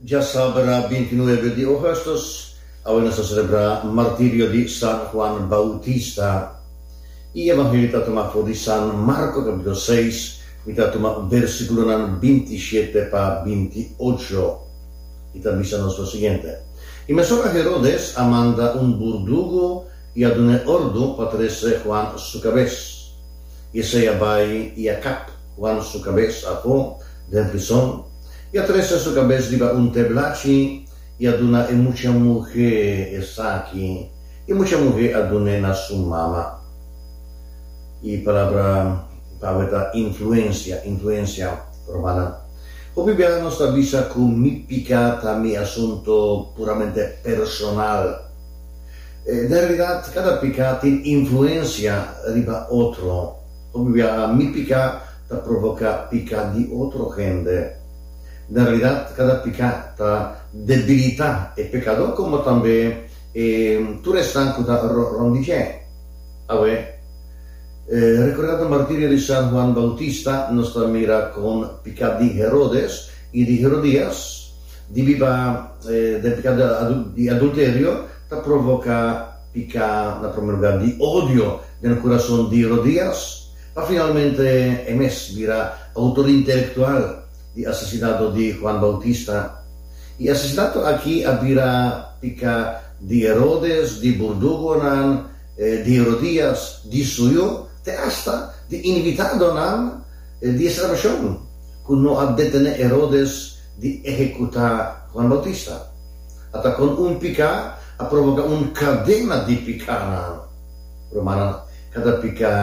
Dja sabra binti nuebe di Augustus, awe nos ta selebrá martirio di San Juan Bautista. I Evangelio ta tuma for di San Marko kapitulo seis, mi ta tuma bersikulonan binti shete pa binti ocho. I ta bisa nos lo siguiente, I mesun a Herodes a manda un burdugu i a dun'é ordu pa trese Juan su kabes, i esei a bai i a kap Wan su kabes a po den prison, i a trese su kabes riba un teblachi, i a duna e mucha muhé esaki, i mucha muhé a dun'é na su mama. E palabra pawe ta influensia, influensia romana. Hopi bia nos ta bisa ku mi piká ta mi asuntu puramente personal. Den realidat, kada piká tin influensia riba otro. Hopi biaha mi piká ta provoká piká di otro hende. Na realidad kada piká ta debilitá e pekadó komo tambe e tur esnan ku ta rònt di dje. Awe, rekordá ta martirio di San Juan Bautista nos ta mira kon piká di Herodes i di Herodías di biba den piká di adulterio ta provoká. Pica na primer lugar di odio den e curason di Rodrias, pa finalmente e mes bira autor intelectual di asesinato di Juan Bautista. Y e asesinato aki a bira pica di Herodes, di burdugonan, di Herodias, di suyo, te hasta di invitadonan di e celebracion, cu no a detene Herodes di ehecuta Juan Bautista. ata kon un piká a provoká un kadena di pikánan. Rumannan, kada piká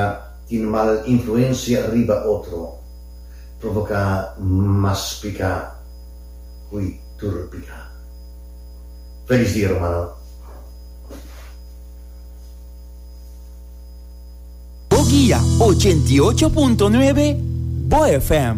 tin mal influensia riba otro, provoká mas piká hui tur piká. Felis dia rumannan. Bo guia ochenta i ocho punto nuebe, bo FM.